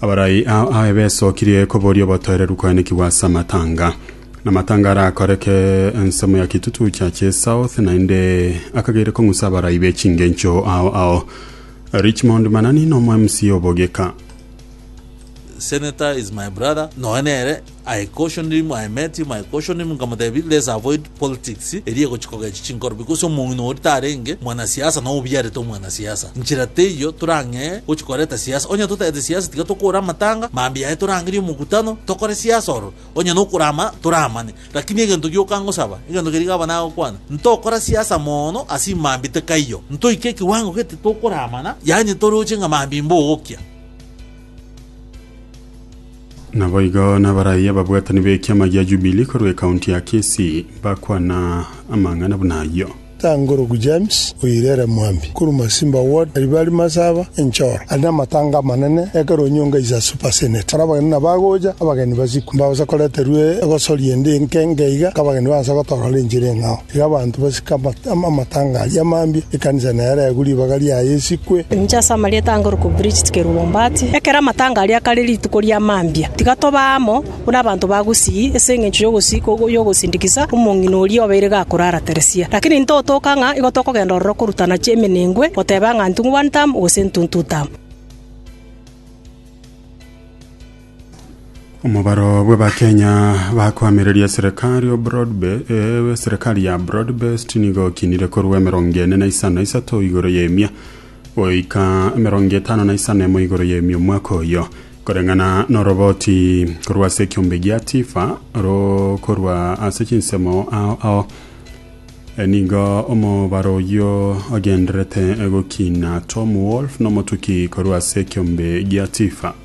Abarai ao a Efeso kirie koboria obotoereru koenekigwa ase amatanga. Namatanga arakoreke ensemo ya kitutu cha chesouth, naende akageire kong'usa abarai be chingencho ao ao. Richmond Manani nomo MC obogika. Senator is my brother nonya nere I cautioned him, I met him, I cautioned him nkamotebia, let's avoid politics eria egochia kogechia chinkorobi, gose omong'ina oria tarenge mwanasiasa nao obiarete omwanasiasa. Nchera teiyo torang'ee gochia koreta siasa. Onye totagete siasa tiga tokore amatanga, mambia yaye torangerie omokutano, tokore siasa ororo. Onye nokorama toramane. Lakini egento gioka ngosaba, egento keria gaba nagokwana, ntokora siasa mono ase imambia tekaiyo. Ntoike ekiwango gete tokoramana, yaani toroche nga mambia imbogokia. Naboigo nabaraiyo ababwatani b'ekiama gia Jubilee korwa ekaunti ya Kisii bakwana amang'ana buna ayio. Tangorogu James oirere Mwambi korwa Masimba ward Aribari Masaba Enchoro ari namatanga amanene ekero Onyonga is a super senate aro abageni nabagocha abageni basiku mbagosa koreterwa egosoria ende enke enke iga nk'abageni baanse gotorora enchera eng'ao. Iga abanto basike amatanga aria amambia, ekanisa nere egwe, ribaga riaye esikwe. Inche ase amarieta ange orokwo Bridget Kerubombati, ekero amatanga aria kare rituko ri'amambia, tiga tobe amo buna abanto ba gusii ase engencho y'ogosii ko y'ogosindikisa omong'ina oria obeire gakorara Teresia. Lakini intwe otoka ng'a igo tokogenda ororo korutana chi'emenengwe, goteba ng'a ntungu one term, gose ntuntu term. Omobaro bw'Abakenya bakoamereria serikali o Broadbe- eh, serikali ya Broadbest nigo okinire korwa emerongo ene na isano na isato igoro y'emia goika emerongo etano na isano emo igoro y'emia omwaka oyo koreng'ana noroboti korwa ase ekiombe gia tifa ro korwa ase chinsemo ao ao E, nigo omobaro oyio ogenderete gokina Tom Wolf nomotuki korwa ase ekiombe gia tifa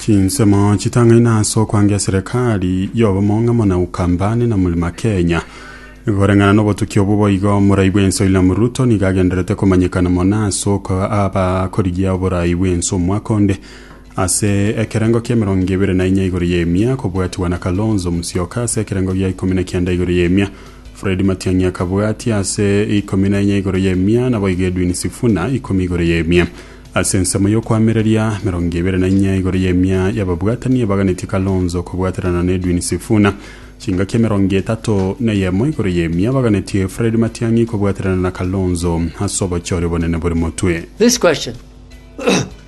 Chinsemo chitang'aine ase okwangia Serikali y'Obomong'amono na Ukambani na Mlima Kenya. Koreng'ana n'obotuki obwo boigo, Morai bw'Ense William Ruto nigo agendererete komanyekana mono ase okoa abakorigia oborai bw'ense omwaka onde. Ase ekerengo ki'emerongo ebere na inya igoro y'emia kobwatigwa na Kalonzo Musyoka ase ekerengo gia ikomi na kianda igoro y'emia, Fred Matiang'i akabwatia ase ikomi na inya igoro y'emia, naboigo Edwin Sifuna ikomi igoro y'emia. Ase ensemo y'okoamereria, emerongo ebere na inya igoro y'emia y'ababwatani ebaganetie Kalonzo kobwaterana na Edwin Sifuna. Chingaki emerongo etato neyemo igoro y'emia baganetie Fred Matiang'i kobwaterana na Kalonzo ase obochori obonene bore motwe. This question.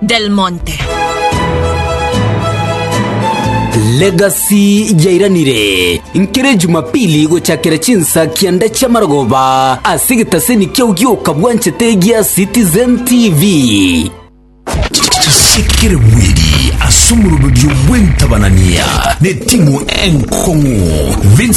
Del Monte. Legacy yairanire nkere Jumapili gochakera chinsa kianda chia marogoba ase getaseni kiao gioka bwanchete gia Citizen TV. Chisekere bweri ase omoroberio bw'entabanania n'etimu enkong'u Vincent